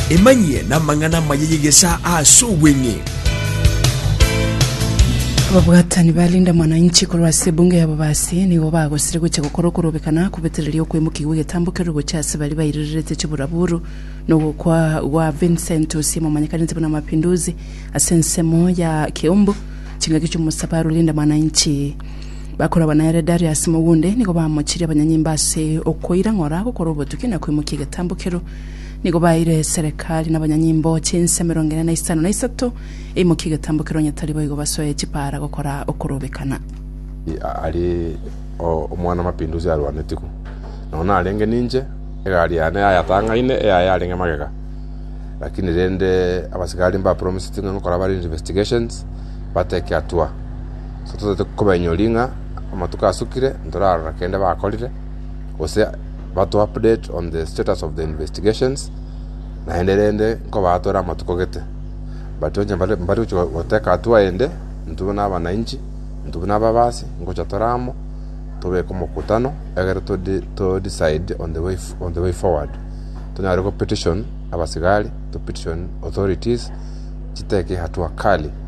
Emanyie namang'ana amaya y'egesaa aase obweng'e. Ababwatani ba Linda Mwananchi korwa ase ebunge ya Bobasi nigo bagosire gocha gokora okorobekana kobetereria okoimokia gw'egetambo keru gocha ase baria bairererete chiburaburu nogokwa gwa Vincent Osiem omanyekanete buna Mapinduzi ase ensemo ya Kiumbu chingaki chi'omosabaro Linda Mwananchi Bakorabwa nere Darius mogunde, nigo bamochirie abanyanyimba ase okoira ng'ora gokora obotuki na koimokia egetambo kero. Nigo baeire Serekari na abanyanyimbo chinsa emerongo ene na isano na isato eimokie egetambo kero onye tari boigo basoe chipaara gokora okorobekana. Aria o Omwana-Mapinduzi arwanetigwe, nonya narenge ninche, egari yane yayatang'aine, eyaye yarenge magega. Lakini rende abasigari mbapromiseti ng'a nkokora bare investigations, bateke atua. so totaete kobainyori ng'a amatuko asukire ntorarora kende bakorire gose batu update on the status of the investigations naende rende nkobatore amatuko gete but onye mbare mbare gochi goteka hatua ende intwe buna abananchi intwe buna ababasi ngocha tore amo tobeke omokutano egere to de- to decide on the way f- on the way forward tonyare go petition abasigari to petition authorities chiteke hatua kali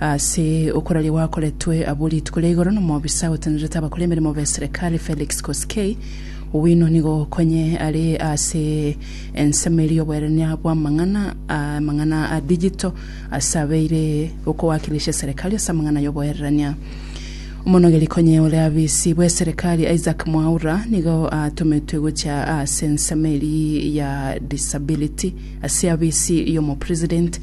Ase okoraria gwakoretwe abwo rituko ria igoro nomobisa otenerete abakora emeremo beserekari Felix Koskei, Owino nigo okonye are ase ensemo eria oboerania bwamang'ana amang'ana a digital ase abeire okowakilisha eserekari ase amang'ana yoboererania. Omonogeri konye ore abisi bweserekari Isaac Mwaura nigo atometwe gocha ase ensemo eria ya disability ase abisi yomopresident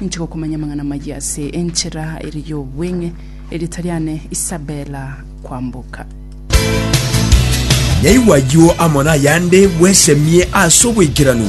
Ninche gokomanya amang'ana amayia ase enchera ere y'obweng'e, erieta riane Isabella Kwamboka. Yaigwa ayio amo nayande, bwesemie ase oboikeranu.